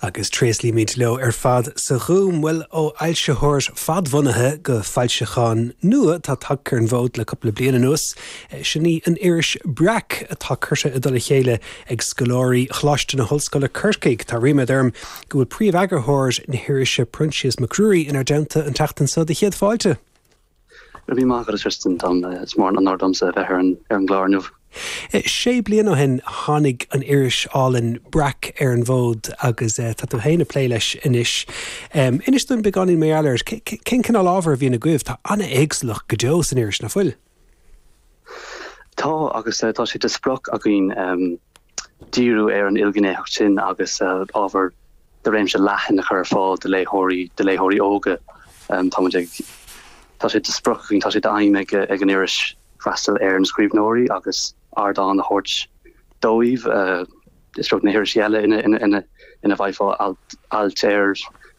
Agus tréaslaímid leo ar fad sa Ghúm. Bhuel, ó fhoilsitheoir fadbhunaithe go foilseachán nua atá tagtha ar an bhfód le cúpla bliain anuas, sin í an iris Breac, atá curtha i dtoll a chéile ag scoláirí Choláiste na hOllscoile Corcaigh. Tá ríméad orm go bhfuil príomheagarthóir na hirise, Proinsias Mac Ruairí, inár dteannta an tseachtain seo. Do chéad fáilte. Go raibh maith agat, a Tristan. Dom is mór an onóir domsa a bheith ar an gclár inniu. Sé bliana ó shin a tháinig an iris álainn Breac ar an bhfód agus tá tú féin ag plé leis anois. Inis dúinn beagáinín mar gheall air. Cén cineál ábhair a bhíonn agaibh? Tá an-éagsúlacht go deo san iris, nach bhfuil? Tá, agus tá sé de sprioc againn díriú ar an ilghnéitheacht sin agus ábhar de réimse leathan a chur ar fáil do léitheoirí, do léitheoirí óga. Tá muid ag. Tá sé de sprioc againn, tá sé d'aidhm ag an iris freastal ar na scríbhneoirí agus ardán a thabhairt dóibh. seachas na hirisí eile ina bhfaighfeá ailt ar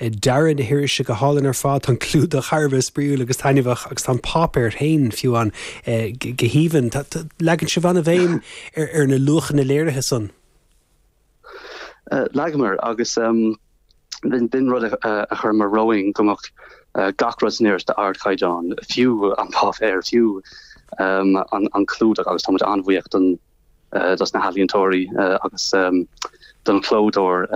Dearadh na hirise go hálainn ar fad, tá an clúdach thar a bheith spraíúil agus taitneamhach agus tá an páipéar féin fiú ann go haoibhinn. Leagann sibh an-bhéim ar na luachanna léirithe san. Leagamar, agus b'in rud a chuireamar romhainn, go mbeadh gach rud san iris d'ardchaighdeán, fiú an páipéar, fiú an clúdach agus tá muid an-bhuíoch don dos na healaíontóirí agus don chlódóir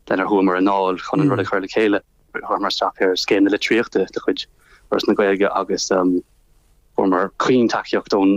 lenar chuamar i ndáil chun an rud a chur le chéile. Chuireamar isteach ar Scéim na Litríochta de chuid Fhoras na Gaeilge agus fuaireamar caointacaíocht ón